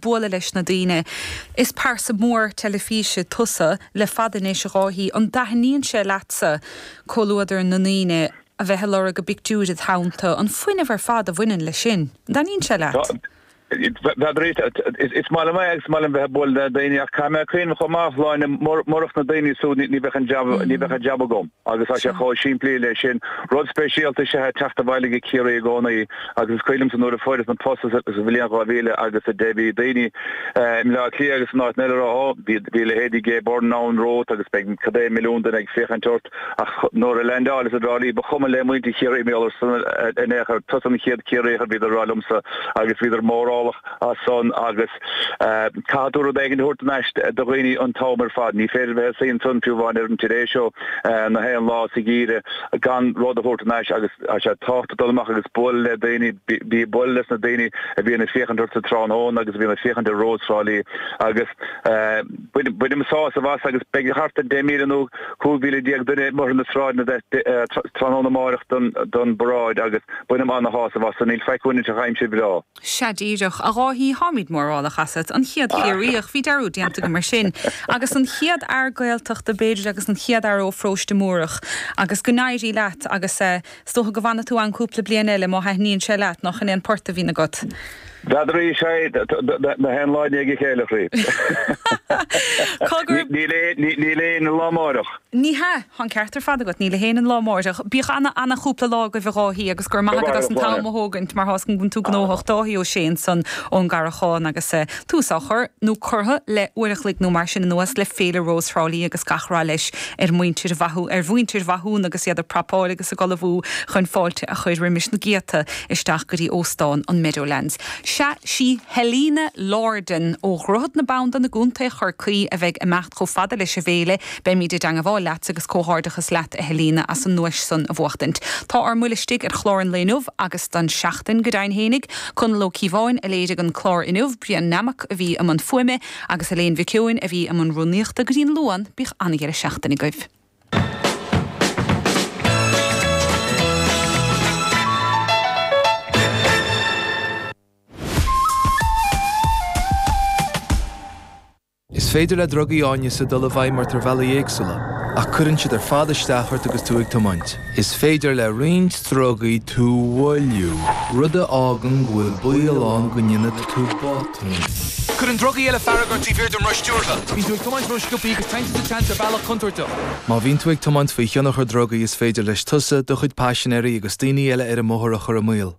bualadh leis na daoine. Is pearsa mhór teilifíse tusa le fada anois, a Dháithí. An dtaitníonn sé leatsa comhluadar na ndaoine, a bheith a lorg a bpictiúir, id theannta, an fuinneamh ar fad a bhaineann leis sin? An dtaitníonn sé leat? Ara, is maith liom é agus is maith liom bheith ag bualadh le daoine ach caithfidh mé cuimhneamh chomh maith, a Shláine, murach na daoine súd ní bheadh, ní bheadh an jab agam. Agus tá sé chomh simplí leis sin. Rud speisialta is ea teacht abhaile go Ciarraí i gcónaí agus is cuimhin liomsa nuair a fuaireas an post sa bhliain 2000 agus a deich, bhí daoine i mBleá Cliath agus in áiteanna eile a rá, ó, bhí leithéidí Gay Byrne ann romhat agus beidh cad é milliún duine ag féachaint ort. Ach nuair a leaindeáileas i dTrá Lí, ba chuma le muintir Chiarraí mar gheall ar san in aon chor. Tusa an chéad Ciarraíoch, a bhíodar a rá liomsa agus bhíodar mórálach as san. Caithfidh tú rud éigint a thabhairt thar n-ais do dhaoine an t-am ar fad. Ní féidir bheith ag suí ansan, fiú amháin ar an Today Show, na haon lá sa gheimhreadh, gan rud a thabhairt thar n-ais agus tá sé tábhachtach dul amach agus bualadh le daoine. Bheith ag bualadh leis na daoine a bhíonn ag féachaint ort sa tráthnóna agus a bhíonn ag féachaint ar Rós Thrá Lí agus bainim sásamh as agus beidh thart ar 10,000 nó 15,000 duine amuigh ar na sráideanna tráthnóna amárach don bparáid agus bainim ana-shásamh as san. Níl faic uainn ach aimsir bhreá. Sea díreach, a Dháithí, táimid mórálach asat. An chéad Chiarraíoch, bhí dearúd déanta agam air sin! agus an chéad fhear Gaeltachta, b'fhéidir, agus an chéad fhear ó Pharóiste Múrach. Agus go n-éirí leat, agus is dócha go bhfanfaidh tú ann cúpla bliain eile, má thaitníonn sé leat, nach 'in é an port a bhíonn agat? N'fheadar é, sea, na haon lá i ndiaidh a chéile, a chroí. Níl aon lá amáireach. Ní hea, tá an ceart ar fad agat, níl ag éinne an lá amáireach. Bíodh ana, ana chúpla lá agaibh, a Dháithí, agus gura maith agat as an t-am a thógaint mar tá a fhios againn go bhfuileann tú gnóthach. Dáithí Ó Sé ansan ón gCarrachán agus tús á chur, nó curtha, le uair a chloig nó mar sin anuas le Féile Rós Thrá Lí agus gach rath leis ar mhuintir Mhathúna, ar mhuintir Mhathúna agus iad ag prapáil agus ag ullmhú chun fáilte a chuir roimis na céadta isteach go dtí Óstán an Meadowlands. Sea, sí Helena Lordan ó Dhroichead na Bandan i gContae Chorcaí a bheidh ag imeacht chomh fada leis an bhFéile, Beimid i dteangabháil leat agus comhghairdeachas leat a Helena as an nduais san a bhuachtaint. Tá ár mbuile istigh ar chlár an lae inniu agus don seachtain, go deimhin fhéinig. Conall Ó Cíobháin a léirigh an clár inniu, Brian Nammock a bhí i mbun fuaime agus Elaine Mhic Eoin a bhí i mbun rúnaíochta. Go dtí an Luan, bíodh an-dheireadh seachtaine agaibh. Is féidir le drugaí áineasa dul i bhfeidhm ort ar bhealaí éagsúla, ach cuireann siad ar fad isteach ort agus tú ag tiomáint. Is féidir le roinnt drugaí tú mhoilliú, rud a fhágann go bhfuil baol ann go ndéanfaidh tú botún. Cuireann drugaí eile fearg ort taobh thiar den roth stiúrtha. Bíonn tú ag tiomáint rósciobtha agus téann tú sa tseans ar bhealach contúirteach. Má bhíonn tú ag tiomáint faoi thionchar drugaí is féidir leis tusa, do chuid paisinéirí agus daoine eile ar an mbóthar a chur i mbaol.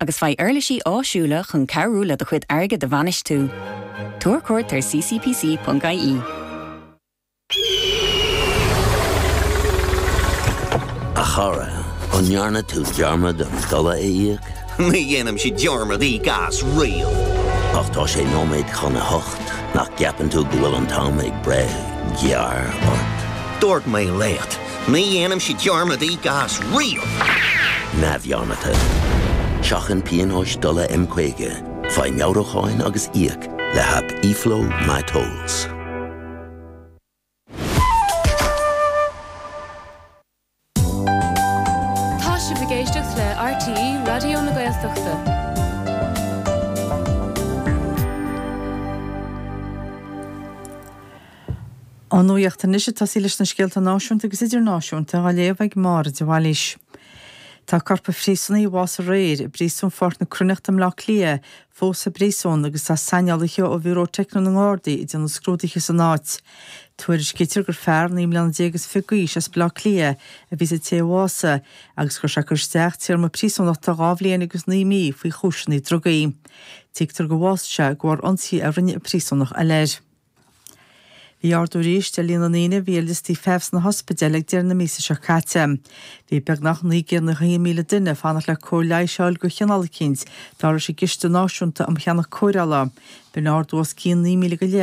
agus faigh uirlisí áisiúla chun cabhrú le do chuid airgid a bhainistiú. Tabhair cuairt ar ccpc.ie. A chara, an ndearna tú dearmad ar an dola a íoc? Ní dhéanaimse dearmad íoc as riamh! Ach tá sé nóiméad chun a hocht, nach gceapann tú go bhfuil an t-am ag breith gearr ort? Dúirt mé leat! Ní dhéanaimse dearmad íoc as riamh. neamhdhearmadta. Seachain pionóis dola M50, faigh meabhrúcháin agus íoc le haip eFlow MyTolls. Tá sibh ag éisteacht le RTÉ Raidió na Gaeltachta. Ón nuaíocht anois tosóidh muid leis na scéalta náisiúnta agus idirnáisiúnta á léamh ag Máire de Bhailís. Tá corp an phríosúnaigh a bhásaigh aréir i bPríosún Ghort na Cruithneachta i mBleá Cliath fós sa bpríosún agus tá saineolaithe ó Bhiúró Teicniúil na nGardaí ag déanamh scrúdaithe san áit. Tuairiscítear gur fear naoi mbliana déag is fiche d'aois as Bleá Cliath a bhí sa té a bhásaigh agus go raibh sé ag cur isteach téarma príosúnachta dhá bhliain agus naoi mí faoi chúiseanna drugaí. Tuigtear gur bhásaigh sé de bharr ionsaí a rinne príosúnach eile air. Bhí ardú arís ar líon na ndaoine a bhí ar liostaí feithimh sna hospidéil ag deireadh na míosa seo caite. Bhí beagnach 991,000 duine ag fanacht le cóir leighis a fháil de chineál eicínt, dar leis an gCiste Náisiúnta um Cheannach Cóireála. B'in ardú os cionn 9,000 go leith.